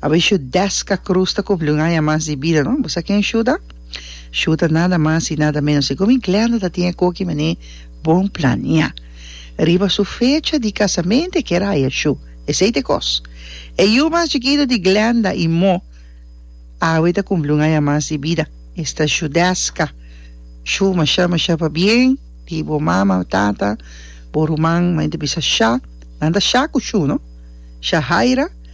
A bishi deska krus ta kumpli un aña mas di bida, no? Bo sa ken shuta? Shuta nada mas i nada menos di komin Glenda ta tin e koki mane bon plania. Riba su fecha di kasamente e kere haya shu. Esei ta e kos. E yu mas chikitu di Glenda i Mo awe ta kumpli un aña mas di bida. E sta shu deska. Shu masha masha pabien di bo mama, tata, bo ruman, maña ta bisa sha. Nan ta sha ku shu, no? Sha Haira.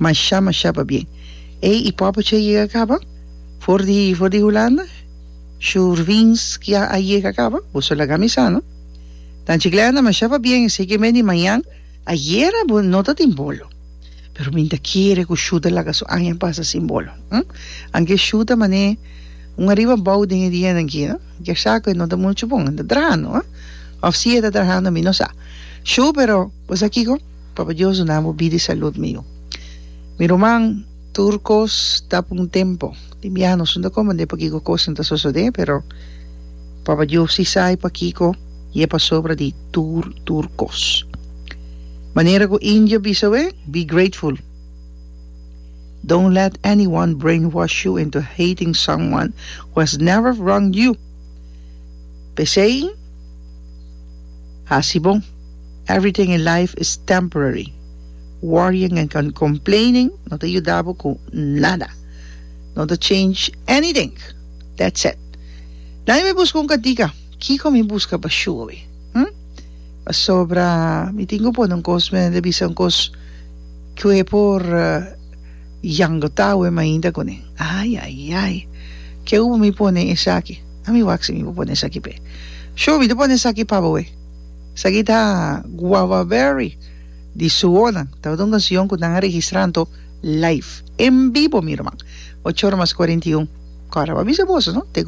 Mashá mashá pabien. Ey, y popo che a yega caba? For di for di Hulanda? Shurvinski a a yega caba? Boso laga mi sa, no? Dan Chiclana, mashá pabien, esey ke mende mañan. Ayera bo no ta tin bolo. Pero mi ta kere cu Shuta laga su aña pasa sin bolo, hm? Anke Shuta manee un ariba bou den e dianan aki, no? Kersá cu e no ta mucho bon, e ta trahando, hm? Of si e ta trahando mi no sa. Shu, pero bo sa kico? Papa Dios duna bo bida i salud mi yu mi ruman tur cos ta pa un tempo den biaha nos no ta comprende pa kico cos nan ta sosode pero Papa Dios si sa i pa kico i e pasobra di tur tur cos manera cu indio bisa awe be grateful don't let anyone brainwash you into hating someone who has never wronged you pesey hasi bon. Everything in life is temporary. Worrying and complaining no ta yuda bo ku nada. No ta change anything. That's it. Dai mi buska un kantika. Kiko mi buska pa shubi? Hm? Pasobra mi tin ku pone un kos, mi ta bisa un kos ku e por yangota awe mainta kuné. Ayayay. Ke ui mi pone esaki? A mi wak si mi por pone esaki p'e. Shubi, mi ta pone esaki pa bo awe. Esaki ta guava berry di suonan. Tabata un canción cu nan a registra anto live, en vivo mi herman. Ocho ora mas cuarenta y un. Cora, bo a bisa boso, no? Te cu.